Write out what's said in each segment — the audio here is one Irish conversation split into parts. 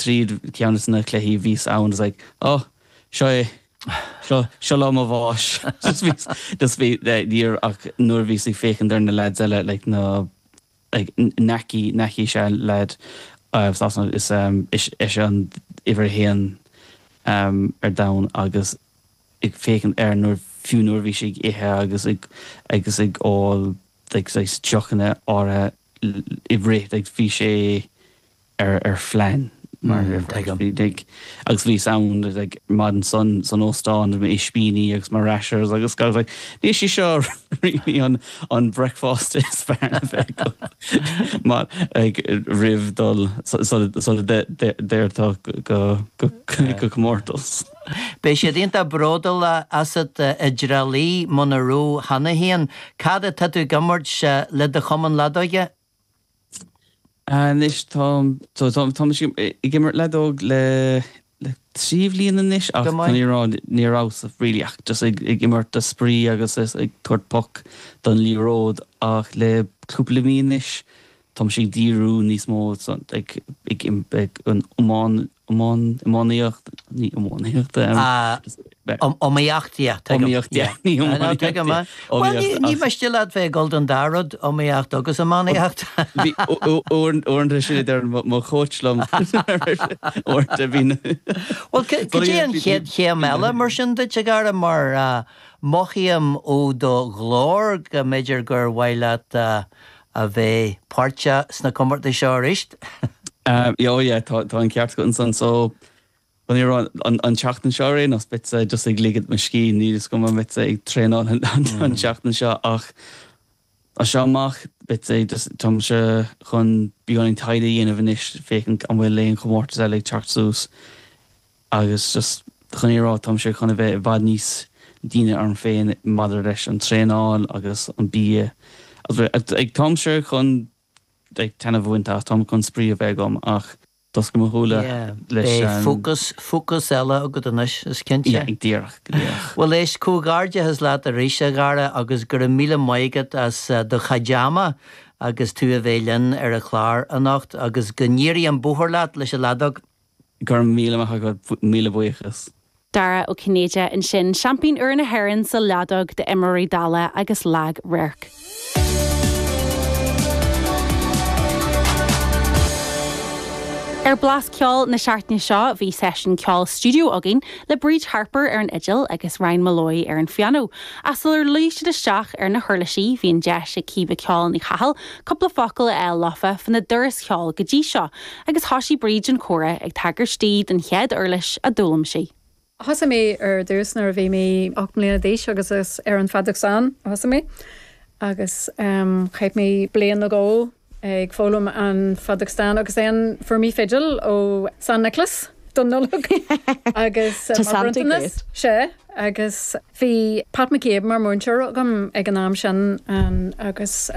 trí cheann de na cluichí bhíos ann is like á seo é seo seo lá mo bháis just bhíos just bhí níor ach nuair a bhíos ag féachaint ar na leaids eile like na like Nahki Nahki is ea an leaid as Sasana is is eisean an uimhir a haon ar domhan agus ag féachaint air nuair fiú nuair a bhí sé ag ithe agus ag agus ag ól like deochanna áirithe i rith like bhí sé ar ar phlean mar a déarfá. Tuigim. Agus bhíos ann like ar maidin san san óstán le m'ispíní agus mo rashers agus I was like níl sé seo really an an breicfeásta is fearr le bheith agam mar like roimh dul sula sula dtéir go go go comórtas. Beidh siad iontach bródúil asat i dTrá Lí muna rabh cheana féin. Cad atá tú ag imirt le do chumann leadóige? Anois táim, so táim, táim ag imirt leadóg le, le trí bhliain anois ach chun an fhírinne a rá ní rabhas really ach just ag, ag imirt do spraoi agus just ag tabhairt poc don liathróid ach le cúpla mí anois táim ag díriú níos mó ag, ag, ag an iomáin. iomáin, iománaíocht, ní iománaíocht é. Sea. Iomaíocht, yeah, tuigim. Iomaíocht, yeah. Ní iománaíocht, yeah. Ná, tuigim, yeah. Iomaíocht, ach. Bhuel, ní miste leat bheith ag dul don dá rud, iomaíocht agus iománaíocht. Bhí, uaireanta sin a deireann mo chóits liom. Uaireanta bhí na. Bhuel, cad é an chéad chéim eile mar sin duit, a Dhara, mar mothaím ó do ghlór go mb'fhéidir gur mhaith leat a bheith páirteach sna comórtais seo arís. Ó yeah tá an ceart agat ansan so chun an fhírinne a rá an tseachtain seo ar aon nós beadsa just ag ligint mo scíth níl fhios agam an mbeadsa ag traenáil an tseachtain seo ach as seo amach beadsa just táimse chun beagán taighde a dhéanamh anois féachaint an bhfuil aon chomórtas eile ag teacht suas. Agus just chun an fhírinne a rá, táimse chun a bheith i bhfad níos díne orm féin maidir leis an traenáil agus an bia. Like táimse chun like taitneamh a bhaint as, táim chun spraoi a bheith agam ach d'oscail mo shúile leis. Yeah, beidh an, focus, focus eile agat anois, is cinnte. yeah, go díreach, go díreach. Bhuel éist, comhghairdeachas leat arís a Dhara agus go raibh míle maith agat as do chuid ama agus tú a bheith linn ar an chlár anocht agus go n-éirí an bóthar leat leis an leadóg. Go raibh míle maith agat, míle buíochas. Dara Ó Cinnéide ansin, seaimpín úr na hÉireann sa leadóg d'imreoirí dalla agus lag-radhairc. Ar Blas Ceoil na seachtaine seo bhí seisiún ceoil stiúideo againn le Bríd Harper ar an fhidil agus Ryan Molloy ar an phianó, ach sular luigh siad isteach ar na huirlisí bhí an deis ag Caoimhe 'Ceol' Ní Chathail cúpla focal a fháil leofa faoina dturas ceoil go dtí seo. Agus thoisigh Bríd an comhrá ag tagairt di don chéad uirlis a d'fhoghlaim sí. Thosaigh mé ar dtús nuair a bhí mé ocht mbliana d'aois agus is ar an feadóg stáin a thosaigh mé agus chaith mé bliain nó dhó ag foghlaim an feadóg stáin agus then fuair mé fidil ó San Nioclás don Nollaig agus mar bhronntanas. Sea. Agus. Bhí Pat McCabe mar mhúinteoir agam ag an am sin agus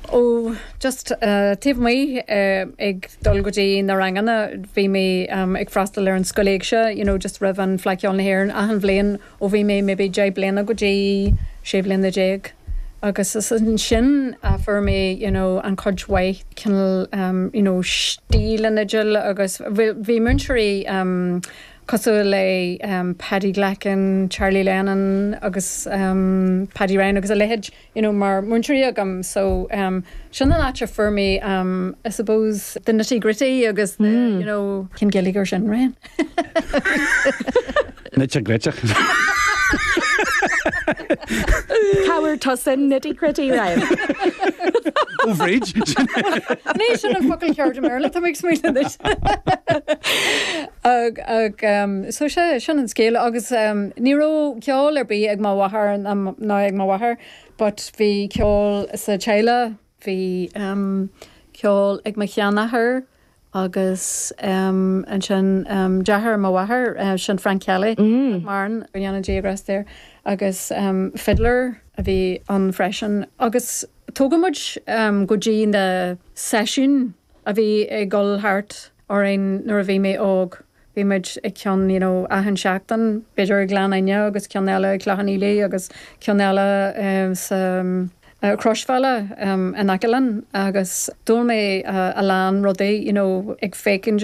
ó just taobh amuigh ag dul go dtí na ranganna bhí mé ag freastal ar an Scoil Éigse you know just roimh an Fleadh Cheoil na hÉireann achan bhliain ó bhí mé maybe deich bliana go dtí sé bhliana déag agus is ansin a fuair mé you know an chuid mhaith cineál you know stíl an fhidil agus bhí múinteoirí cosúil le Paddy Glackin, Charlie Lennon agus Paddy Ryan agus a leithéid you know mar múinteoirí agam so sin an áit a fuair mé I suppose the nitty gritty agus the you know cén Gaeilge ar sin Brian? Nitty gritty. Tabhair tusa nitty gritty Ryan. Ó Bhríd. Ní sin an focail ceart i mBéarla tá mé ag smaoineamh anois. Ag, ag, so sé, sin an scéal agus ní raibh ceol ar bith ag mo mháthair ná ag mo mháthair but bhí ceol sa teaghlach, bhí ceol ag mo sheanathair agus ansin deartháir mo mháthair, sin Frank Kelly, nach maireann, go ndéana Dia grásta air agus fiddler a bhí ann freisin agus tugadh muid go dtí na seisiúin a bhí ag dul thart. orainn nuair a bhí mé óg. Bhí muid ag ceann you know achan seachtain b'fhéidir i Gleann Fhinne agus ceann eile i Cloich Cheann Fhaola agus ceann eile sa Chroisbhealaí in aice linn agus d'fhoghlaim mé a lán rudaí you know ag féachaint agus